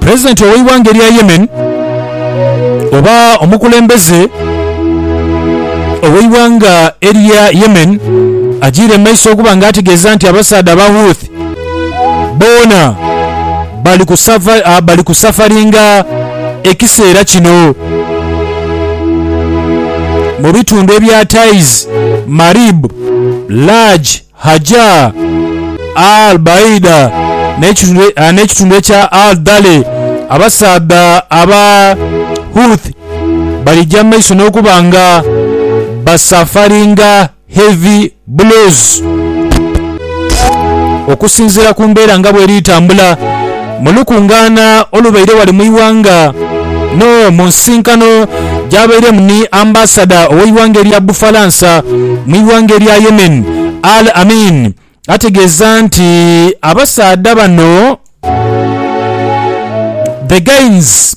Pulezidenti ow'eighanga erya Yemen oba omukulembeze ow'eighanga erya Yemen agiire mu maiso okuba nga ategeeza nti abasaadha aba Houthi boona bali kusafaringa ekiseera kino mu bitundu ebya Taiz, Marib, Laj. Hajjaa, Al Baida n'ekitundu ekya Al Dale. Abasaadha aba Houthi balija mu maiso n'okuba nga basafaringa heavy blues. Okusinziira ku mbeera nga bweri etambula, Mu lukungaana olubaire ghale mu ighanga no mu nsisinkano gyabairemu ni Ambasada ow'eighanga erya Bufalansa mu ighanga erya Yemen, Al Amin ategeeza nti abasaadha bano The Gaines,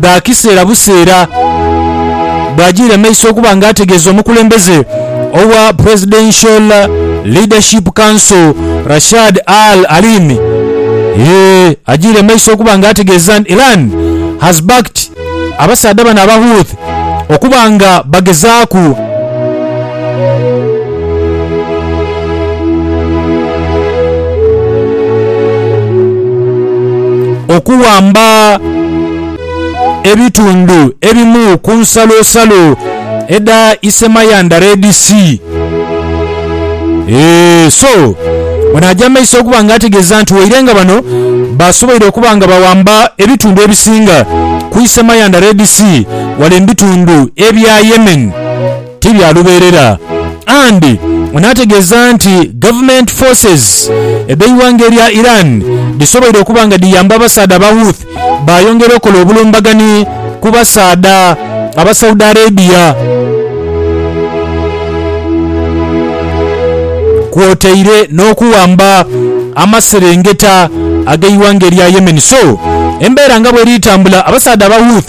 dha kiseera buseera bw'agiire mu maiso okuba nga ategeeza omukulembeze owa Presidential Leadership Council Rashad Al Alimi Eeh agiire mu maiso okuba nga ategeeza nti Iran has backed abasaadha bano aba Houthi okuba nga bagezaaku Okuwamba ebitundu ebimu ku nsalosalo edha Isemayandha Red Sea. Eeh, so ono aja mumaiso okuba nga ategeeza nti waire nga bano basoboire okuba nga bawamba ebitundu ebisinga ku Isemayandha Red Sea wale mubitundu ebya Yemen, ti bya lubeerera and n'ategeeza nti government forces edh'eighanga erya Iran dhisoboire okuba nga dhiyamba abasaadha aba Houth baayongera okola obulumbagani ku basaadha aba Saudi Arabia kwotaire n'okuwamba amaserengeta ag'eighanga erya Yemen. So embeera nga bweri tambula, abasaadha aba Houth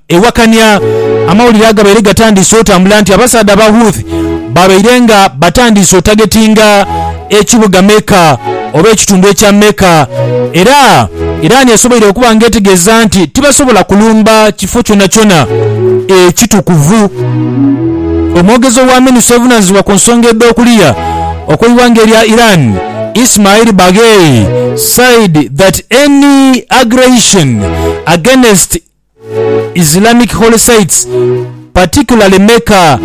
Ewakania amawulire agabaire gatandiise otambula nti abasaadha aba Houthi babaire nga batandiise otagetinga ekibuga Mecca oba ekitundu ekya Mecca era Iran esoboire okuba nga etegeeza nti tibasobola kulumba kifo kyonakyona ekitukuvu. Omwogezi owa Minustry evunanizibwa ku nsonga edh'okuliya okw'eighanga erya Iran Ismail Baghei said that any aggression against Islamic holy sites, particularly Mecca,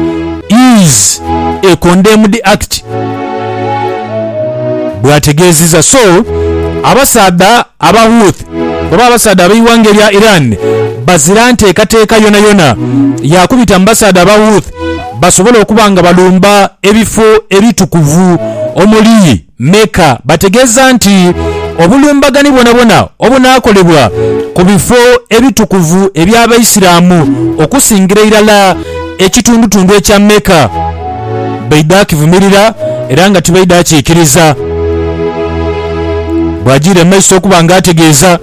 is a condemned act, bw'ategeezizza. So abasaadha aba Houth oba abasaadha ab'eighanga erya Iran bazira nteekateeka yonayona ya kubita mu basaadha aba Houth basobole okuba nga balumba ebifo ebitukuvu omuli Mecca bategeeza nti obulumbagani bwonabwona obunaakolebwa ku bifo ebitukuvu eby'Abaisiraamu okusingira irala ekitundutundu ekya Mecca baidha kivumirira era nga tibaidha kiikiriza, bw'ajiira mu maiso okuba nga ategeeza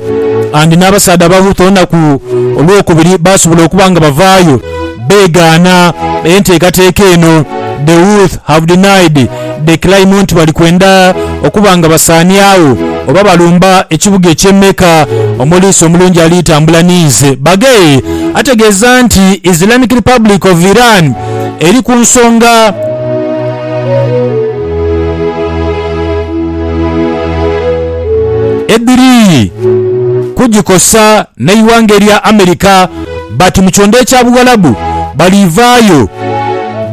and n'abasaadha abahuutu olunaku Olwokubiri baasobola okuba nga bavaayo beegaana enteekateeka eno. The Houth have denied Declaimont nti bali kwenda okuba nga basaaniagho oba balumba ekibuga eky'e Mecca omuliisa omulungi ali tambula ninze. Baghei ategeeza nti Islamic Republic of Iran eri ku nsonga. Edhiri kugikosa n'eighanga erya America. Bati mu kyondha ekya Buwalabu baliivaayo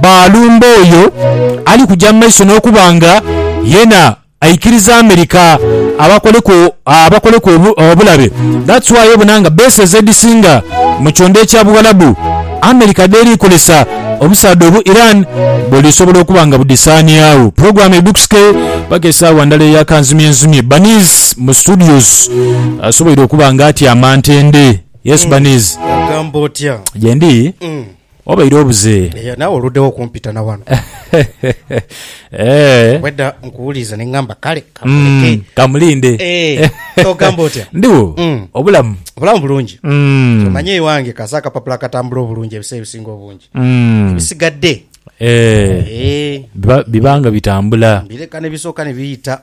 baalumba oyo ali kuja mu maiso n'okuba nga yena aikiriza America abakoleku abakoleku obulabe. That's why obona nga bases edhisinga mu kyondha ekya Buwalabu America dheeri kozesa obusaadha obu Iran buli sobola okuba nga budhisaaniagho. Program edhukusike paka esaawa ndala eya kanzumyenzumye. Baniz mu studios asoboire okuba nga atyama ntende. Yesu baniizi. Ogamba otya? Gyendi obaire obuze. Eya naawe oluddewo okumpita na wano. Eeh. Obwedda nkuwuliriza ne ngamba kale kamuleke. Mm, kamulinde. Eeh, ogamba otya? Ndigho, obulamu. Obulamu bulungi. Ky'omanyi ewange kasa akapapula akatambula obulungi ebiseera ebisinga obungi. Ebisigadde. Eeh, biba nga bitambula. Mbireka ne bisooka ne biyita.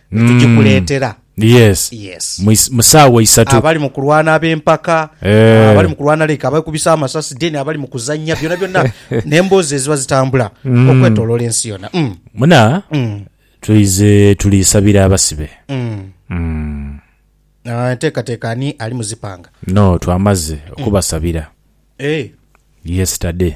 ne tugikuleetera. Yes. Yes. Mu is- mu saawa isatu. abali mu kulwana ab'empaka Eh. abali mu kulwana like abekubisa amasasi then abali mu kuzannya byona byonna n'emboozi eziba zitambula Mm. okwetoloola ensi yona Mm, Muna mm, tuize tulisabira abasibe. mm. Mm. Ah, enteekateeka ani ali mu zipanga No twamaze okubasabira. Eh, Yesterday.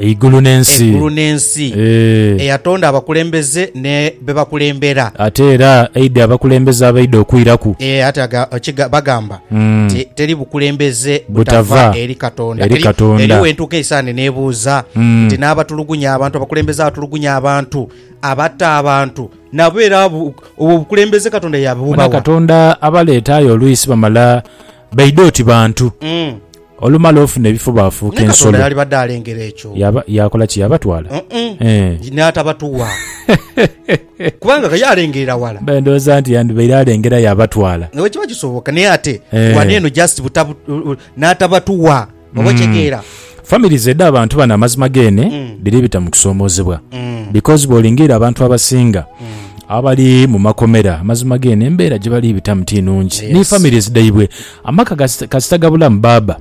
Eigulu n'ensi. Eigulu n'ensi. Eeh. Eyatonda abakulembeze ni be bakulembera. Ate era aidha abakulembeze abaidha okwiraku. Eeh, ate aga, kiga, bagamba nti, Teri bukulembeze butava eri Katonda. Eri Katonda. Eriyo we ntuuka eisaani nebuuza nti, N'abatulugunya abantu, abakulembeze abatulugunya abantu, abatta abantu, nabo era abo, obwo obukulembeze Katonda yabubawa? Bona Katonda abaleeta aye olwisi bamala Baidha oti bantu. Mm. Olumala ofuna ebifo baafuuka Naye Katonda ensolo. yalibadde alengera ekyo. Yaba, yakola ki? Yabatwala? Mm-mm. Eh. N'atabatuwa. Kubanga ka ye alengerera wala. Mbaire ndowooza nti yandibaire alengera yabatwala. Naye bwe kiba kisoboka naye ate Eh. wano eno just butabu- n'atabatuwa. Oba okyegeera? Families edh'abantu bano amazima geene dhiri bita mu kusoomoozebwa because bw'olingiira abantu abasinga abali mu makomera amazima geene embeera gye bali bitamu ti nnungi ni families dhaibwe. Amaka kas- kasita gabulamu baaba,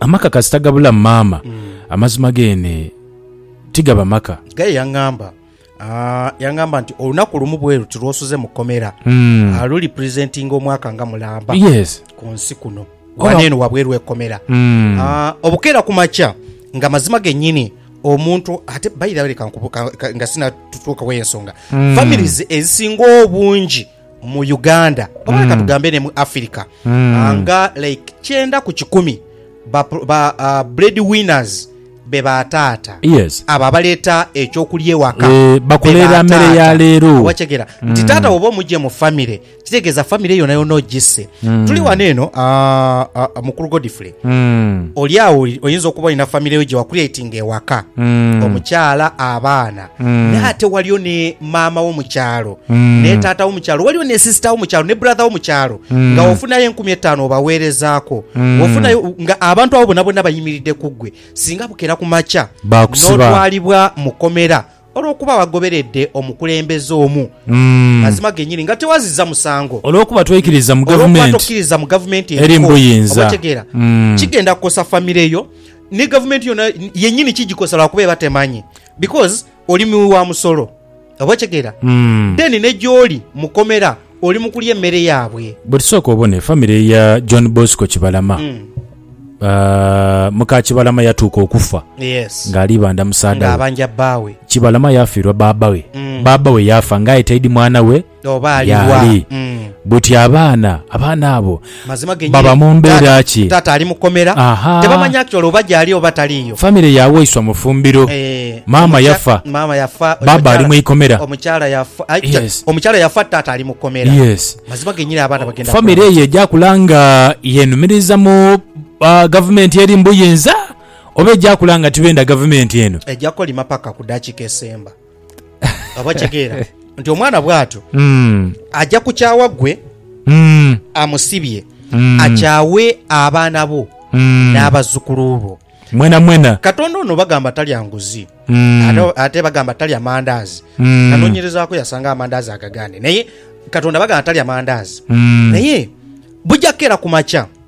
amaka kasita gabulamu maama, amazima geene tigaba maka. Gaye yangamba Ah, yangamba nti olunaku lumu bwe luti lwosuze mu komera Mm. ah, luli presentinga omwaka nga mulamba yes ku nsi kuno Oba- wano eno wabweru ekomera Mm. Ah, obukeera ku makya nga mazima gennyini omuntu ate bayirabireka nga sinatutuukawo ensonga Mm. families ezisinga obungi mu Uganda oba leka tugambe ne mu Africa ah, nga like kyenda ku kikumi ba, ba ah, bread winners be ba taata Yes. abo abaleeta ekyokulya ewaka Eh, bakuleera be ba mmere ya taata. leero. Mm. wakyegera nti taata woba omugye mu famire kitegeeza famire yonayona ogisse Mm. tuli wano eno ah, ah, mukulu godfrey Mm. oli awo oli- oyinza okuba olina famire yo gye wakuleetinga ewaka Mm. omukyala abaana N'ate waliyo ni maama wo mu kyalo, ni taata wo mu kyalo, waliyo ni sisita wo mu kyalo, ni buradha wo mu kyalo, nga wofunayo enkumi etaanu obaweerezaaku, wofunayo nga abantu abo bonabona bayimiridde ku ggwe, singa bukera ku makya n'otwalibwa mu kkomera olw'okuba wagoberedde omukulembeze omu, mazima gennyini nga tewazizza musango, olw'okuba tokkiriza mu gavumenti eriko obuyinza, otegeera, kigenda kukosa famire yo, ni gavumenti yona yennyini kigikosa lwa kuba eba temanyi. Because oli mughi wa musolo. Oba okitegeera? Then ne gy'oli mu komera oli mu kulya emmere yaabwe. Bwe tusooka obone famire ya John Bosco Kibalama, ah, muka Kibalama yatuuka okufa Yes. ng'ali ibandha musaadha we. Ng'abanja bbaawe. Kibalama yaafiirwa bbaabba we. Bbaabba we yaafa ng'aye taidi mwana we. yaali. Buti abaana, abaana abo baba mu mbeera ki? Ahaa. Famire ya waiswa mufumbiro, maama yafa, baaba ali mu ikomera. Yes. Yes. Famire eyo eja kula nga yenumiriza mu gavumenti eri mu buyinza oba eja kula nga tibenda gavumenti eno? Obategeera nti omwana bw'atyo Mm. aja kukyawa gwe Mm. amusibye, Mm. akyawe abaana bo Mm. n'abazzukulu bo. Mwena mwena. Katonda ono bagamba talya nguzi Mm. ate- ate bagamba talya mandaazi. Mm. Nanoonyerezaako yasanga amandaazi agagane naye Katonda bagamba talya mandaazi Mm. naye bujja kukeera ku makya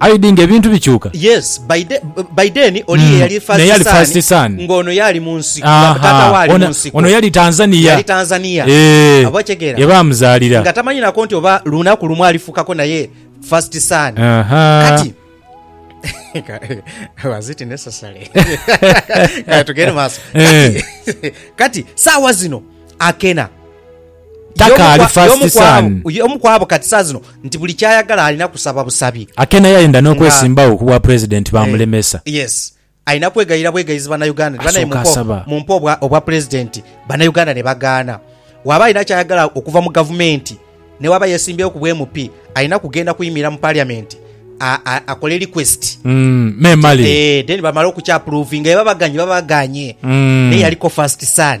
Aye di nga ebintu bikyuka. Yes, by the, by then oli ye yali first son. Naye yali first son. Nga ono yali mu nsiko, nga taata we ali mu nsiko. Ono yali Tanzania. Yali Tanzania. Eeh. Oba okitegeera? Ye baamuzaalira. Nga tamanyi nako nti oba lunaku lumu alifukako naye first son. Ahaa. Kati. Was it necessary? Kati tugende maaso. Kati, kati saawa zino akena. Takaali first son. Y'omu ku abo kati saa zino nti buli ky'ayagala alina kusaba busabi. Ate naye ayenda n'okwesimbawo ku bwa Pulezidenti baamulemesa. Yes. Alina kwegayirira bwegayizi Bannayuganda nti bannaye mumpe mumpe obwa Pulezidenti Bannayuganda ne bagaana. Bw'aba alina ky'ayagala okuva mu Gavumenti ne bw'aba yeesimbyewo ku bwa MP alina kugenda kuyimirira mu Paliyamenti akole request. Me Male. Eeh then bamale okukyapuruvinga. Bwebaba baganye baba baganye. Naye yaliko first son.